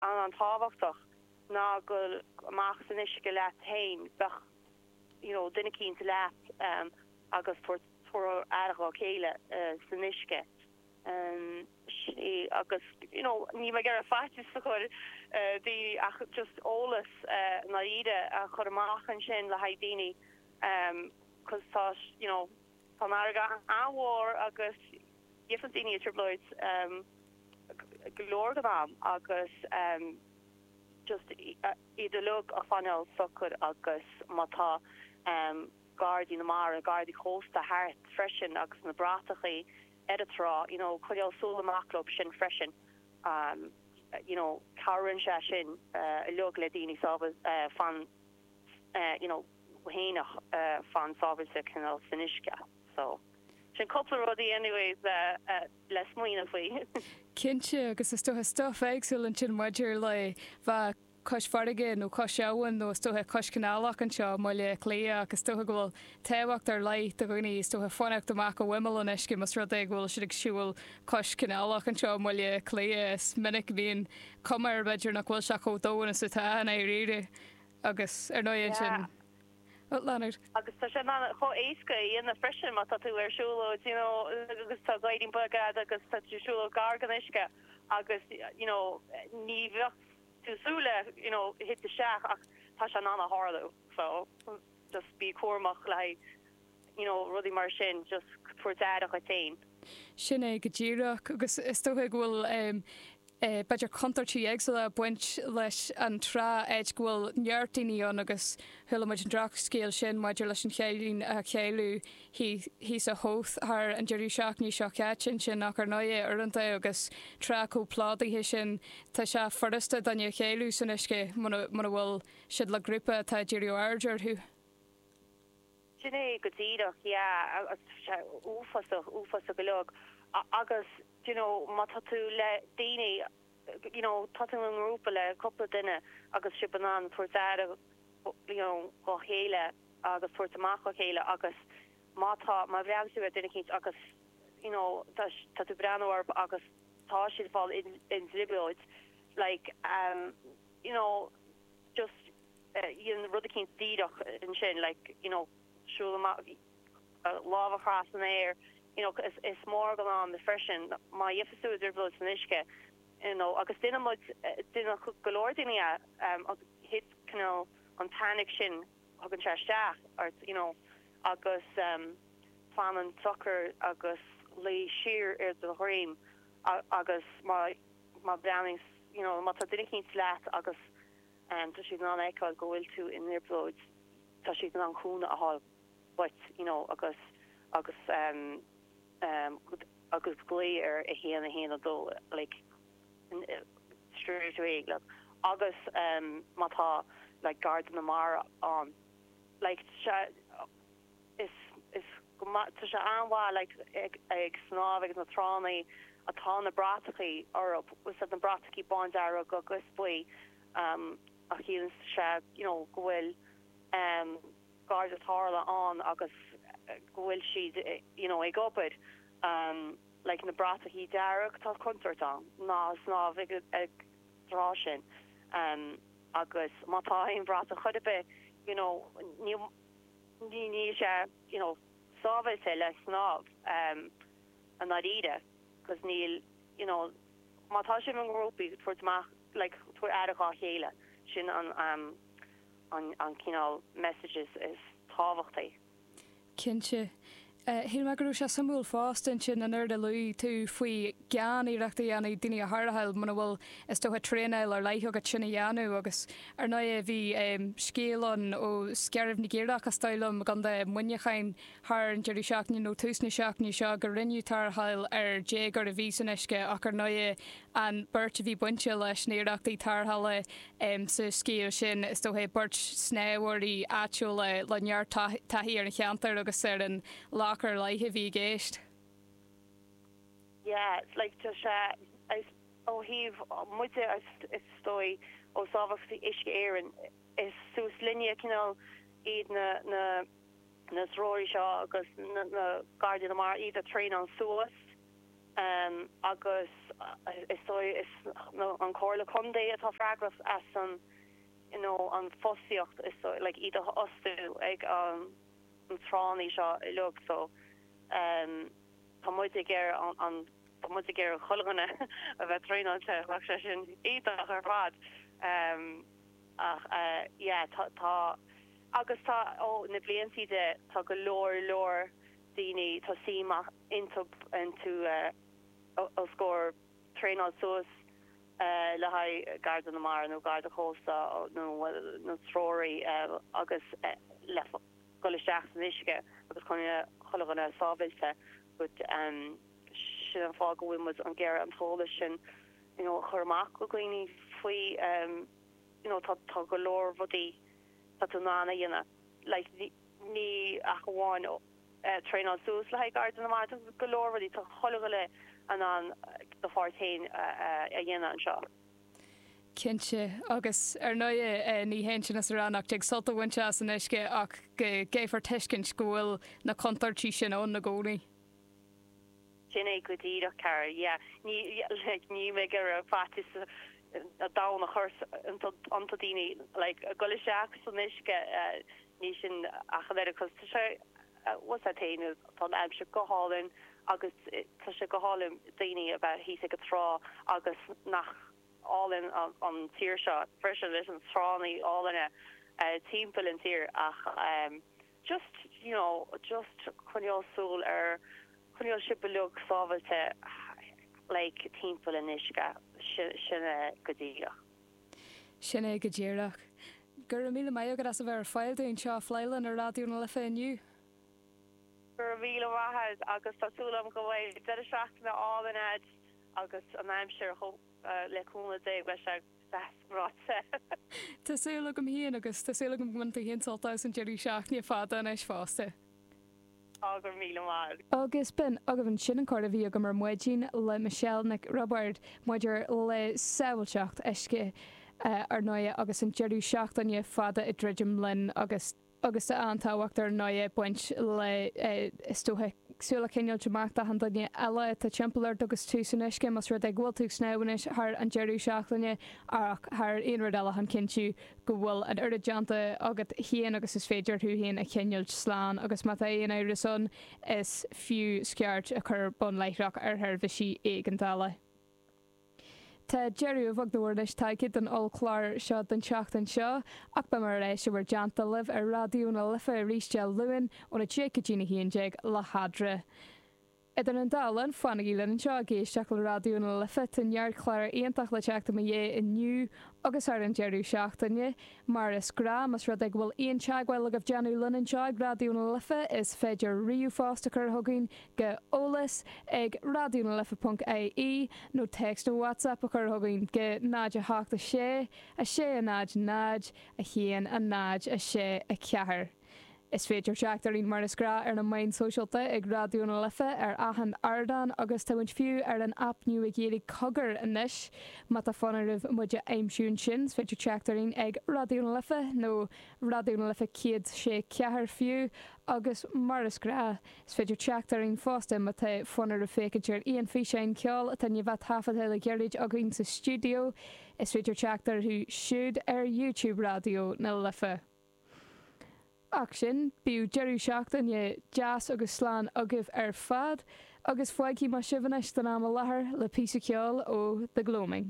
An- an-tábhachtach ná gabh amach san uisce leat fhéin, bíodh you know duine eicínt leat agus tabhairt aire dhá chéile san uisce see agus you know níl mé ag iarraidh faitíos a chur ar dhaoine ach just eolas i ndáiríre a chur amach ansin le haghaidh daoine cause tá you know. Tá an fharraige an-mhór agus bíonn daoine i dtrioblóid go leor den am agus just iad uilig a choinneáil socair agus má tá Gardaí na Mara, Gardaí Cósta thart freisin agus na bratachaí ar a trá, you know, coinneáil súil amach dóibh sin freisin, you know, cabhraíonn sé sin uilig le daoine sábháil fan-. fhéineach fan sábháilte cineál san uisce. So, sin cúpla rud anyways le smaoineamh faoi. Cinnte, agus is dócha stuff éagsúil ansin maidir le bheith cois farraige nó cois abhann nó is dócha cois canálach anseo i mBaile Átha Cliath ach is dócha go bhfuil tábhacht ar leith do dhaoine is dócha fanacht amach ó imeall an uisce más rud é go bhfuil siad ag siúl cois canálach anseo i mBaile Átha Cliath. Is minic a bhíonn cuma air b'fhéidir nach bhfuil sé chomh domhain is atá i ndáiríre. Agus ar ndóigh ansin, Leonard. Agus tá sé chomh éasca a dhéanamh freisin má tá tú ar shiúlóid you know agus tá gadhairín beag agat agus tá tú ag siúlóid gar don uisce agus you know ní bheadh tú ag súil le you know titim isteach ach tá sé in ann a tharlú so just bí cúramach le haghaidh you know, rudaí mar sin, just tabhair aire dhuit féin. Sin é go díreach, agus is dócha go bhfuil, em. eh. b'fhéidir contúirtí éagsúla ag baint leis an trá cé go bhfuil neart daoine ann agus chuala muid an drochscéal sin maidir leis an chailín a cailleadh thíos, thíos i Howth thar an deireadh seachtaine seo caite ansin ach ar ndóigh uaireanta agus trá chomh plódaithe sin tá sé furasta duine a chailleadh san uisce muna, muna bhfuil siad le grúpa atá ag díriú aird orthu. Sin é go díreach, yeah, agus tá sé uafásach, uafásach uilig agus d'you know, má tá tú le daoine, d'you know, tá tú i ngrúpa le cúpla duine agus sibh in ann tabhairt aire, d'you know, dá chéile agus tabhairt amach dá chéile agus má tá, má bhreathnaíonn tú ar duine eicínt agus d'you know, tá, tá tú ag breathnú orthu agus tá siad ag fáil i dtrioblóid like, d'you know, just. déan rud eicínt díreach ansin like you know siúl amach lámh a chur san aer you know is mór an ann freisin má gheibheas tú i dtrioblóid san uisce you know agus déanann muid déanann go leor daoine é agus thit you know an panic sin tagann sé isteach ort you know agus fanann socair agus luí siar ar do dhroim agus má má bhreathnaíonn you know má tá duine eicínt leat agus tá siad in ann a fheiceáil go bhfuil tú i dtrioblóid, tá siad in ann cúnamh a thabhairt dhuit you know agus, agus agus glaoigh ar a haon, a haon a dó like straight away like agus má tá like Garda na Mara ann like sea, is is go maith tá sé an-mhaith like ag ag snámh ag na tránna atá na bratachaí orthu is iad na bratachaí bándearg agus buí um a chiallaíonn sé you know go bhfuil um gardaí tarrthála ann agus go bhfuil siad you know ag obair um like na bratachaí dearg tá contúirt ann ná snámh ag an trá sin um agus má tá aon bhratach chor ar bith you know níl níl sé you know sábháilte le snámh i ndáiríre because níl you know má tá sibh i ngrúpaí tabhairt amach like tabhair aire dhá chéile sin an an cineál messages is tábhachtaí. Cinnte. Shíl mé go raibh sé suimiúil fosta ansin an rud a luaigh tú faoi gan iarracht a dhéanamh daoine a tharrtháil muna bhfuil, is dócha, traenáil ar leith agat sin a dhéanamh. Agus ar ndóighe, bhí scéal ann ó Scairbh na gCaorach, is dóigh liom, i gContae Mhuineacháin thar an deireadh seachtaine nó tús na seachtaine seo gur rinneadh tarrtháil ar dhéagóir a bhí san uisce ach ar ndóighe An bheirt a bhí bainte leis na hiarrachtaí tarrthála sa scéal sin, is dócha, beirt snámhóirí áitiúla le neart taithí ar an cheantar agus ar an loch ar leith a bhí i gceist. Yeah, like, tá sé, ó thaobh, muide, is dóigh, ó Shábháilteacht Uisce Éireann, is suas linne cineál iad na, na, na treoraí seo agus na, na Gardaí na Mara, iad a thraenáil suas. agus is dóigh is an Chomhairle Contae atá freagrach as an you know an fostaíocht is dóigh like iad a fhostú ag an na tránnaí seo uilig so tá muid ag iarraidh tá muid ag iarraidh chuile dhuine a bheith traenáilte bheadh sé sin iontach ar fad ach yeah tá tá agus tá ó na bliantaí de tá go leor leor daoine tá suim intub and to os comhair traenáil suas le haghaidh Garda na Mara nó Garda Cósta nó treoraí agus le dhul isteach san uisce agus coinneáil chuile dhuine sábháilte but sin an fáth go bhfuil muid ag iarraidh an t-eolas sin you know a chur amach go dhaoine faoi you know tá tá go leor rudaí tá tú in ann a dhéanamh like ní ach amháin traenáil suas le haghaidh Garda na Mara. Tá go leor rudaí, tá chuile dhuine in ann do pháirt fhéin a dhéanamh anseo. Cinnte, agus ar ndóighe ní hionann sin is a rá nach dtig sult a bhaint as an uisce ach go gcaithfear tuiscint go bhfuil na contúirtí sin ann i gcónaí. Sin é go díreach, cara. Yeah, ní, like, níl mé ag iarraidh faitíos an domhain a chur iontu daoine, like, a dhul isteach san uisce, ní sin ach an oiread, cos, tá sé, what's that saying, tá an aimsir go hálainn agus tá sé go hálainn daoine a bheith thíos ag an trá agus nach álainn an tír seo freisin leis na tránna álainne timpeall an tír ach, just, you know, just coinneáil súil ar, coinneáil sibh uilig sábháilte like timpeall an uisce, sin é go díreach. sin é go díreach. Go raibh míle maith agat as a bheith ar fáil dúinn, anseo ag plé linn ar Raidió na Life inniu. Go raibh míle maith agat agus tá súil agam go bhfuil deireadh seachtaine álainn agat agus an aimsir le cúnamh Dé beidh sé. deas ráite. Tá súil agam féin agus tá súil agam go mbainfidh tú féin sult as an deireadh seachtaine fada anois fosta. Tá go raibh míle maith. Agus b'in agaibh ansin an comhrá a bhí agam ar maidin le Michelle Nic Roibeaird maidir le sábháilteacht uisce, ar ndóighe, agus an deireadh seachtaine fada ag druidim linn agus, agus tá an-tábhacht ar ndóigh ag baint le, is dócha, súil a choinneáilt amach d'achan duine eile atá timpeall ort agus tú san uisce, más rud é go bhfuil tú ag snámh anois thar an deireadh seachtaine ach thar aon rud eile chun cinntiú go bhfuil an oiread déanta agat féin agus is féidir thú féin a choinneáilt slán agus má tá aon amhras ann is fiú scairt a chur bonn láithreach ar sheirbhísí éigeandála. Tá deireadh a bheag nó a mhór leis tagtha don ollchlár seo don tseachtain seo, ach beimid ar ais i bhur dteannta libh ar Raidió na Life arís Dé Luain óna deich go dtí a haon déag le hEadra. Idir an dá linn, fanaigí linn anseo ag éisteacht le Raidió na Life, tá neart cláir iontach le teacht i mo dhiaidh inniu agus thar an deireadh seachtaine. Mar is gnáth, más rud é go bhfuil aon teagmháil agaibh déanamh linn anseo ag Raidió na Life, is féidir ríomhphost a chur chugainn go eolas ag raidionalife.ie nó téacs nó WhatsApp a chur chugainn go 086 600 1064. Is féidir teacht orainn mar is gnáth ar na meáin sóisialta ag Raidió na Life ar achan ardán agus tá muid fiú ar an aip nua Ghaeilge Cogar anois. Má tá fonn oraibh muid a aimsiú ansin, is féidir teacht orainn ag Raidió na Life nó Raidió na Life 100 sé ceathair fiú agus mar is gnáth is féidir teacht orainn fosta má tá fonn oraibh féachaint ar aon físeáin ceoil atá i ndiaidh a thaifeadadh le gairid againn sa stiúideo, is féidir teacht orthu siúd ar YouTube Raidió na Life. Ach sin, bíodh deireadh seachtaine deas agus slán agaibh ar fad, agus fágfaidh mé sibh anois don am i láthair le píosa ceoil ó The Gloaming.